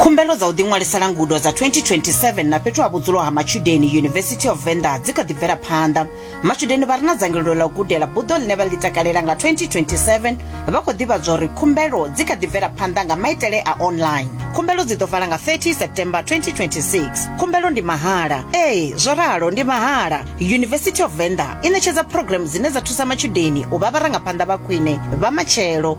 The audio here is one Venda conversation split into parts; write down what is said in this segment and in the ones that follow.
khumbelo dza u ḓiṅwalisela ngudo dza 2027 na fhethu ha vhudzulo ha matshudeni university of venda dzi kha ḓi bvela phanḓa matshudeni vha re na dzangalelo ḽa u gudela buḓo ḽine vha ḽi takalela nga 2027 vha khou ḓivhadzwa uri khumbelo dzi kha ḓi bvela phanḓa nga maitele a online khumbelo dzi ḓo vala nga 30 september 2026 khumbelo ndi mahala ee zwo ralo ndi mahala university of venda i ṋetshedza programu dzine dza thusa matshudeni u vha vharangaphanḓa vha khwine vha matshelo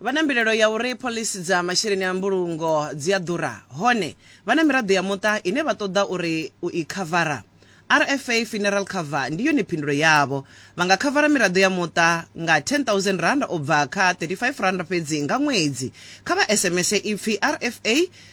vha na mbilelo ya uri phoḽisi dza masheleni a mbulungo dzi a ḓura hone vha na miraḓo ya muṱa ine vha ṱoḓa uri u i khavara rfa funeral cover ndi yone phindulo yavho vha nga khavara miraḓo ya muṱa nga 10000 rand u bva kha 35 rand fhedzi nga ṅwedzi kha vha sms ipfi rfa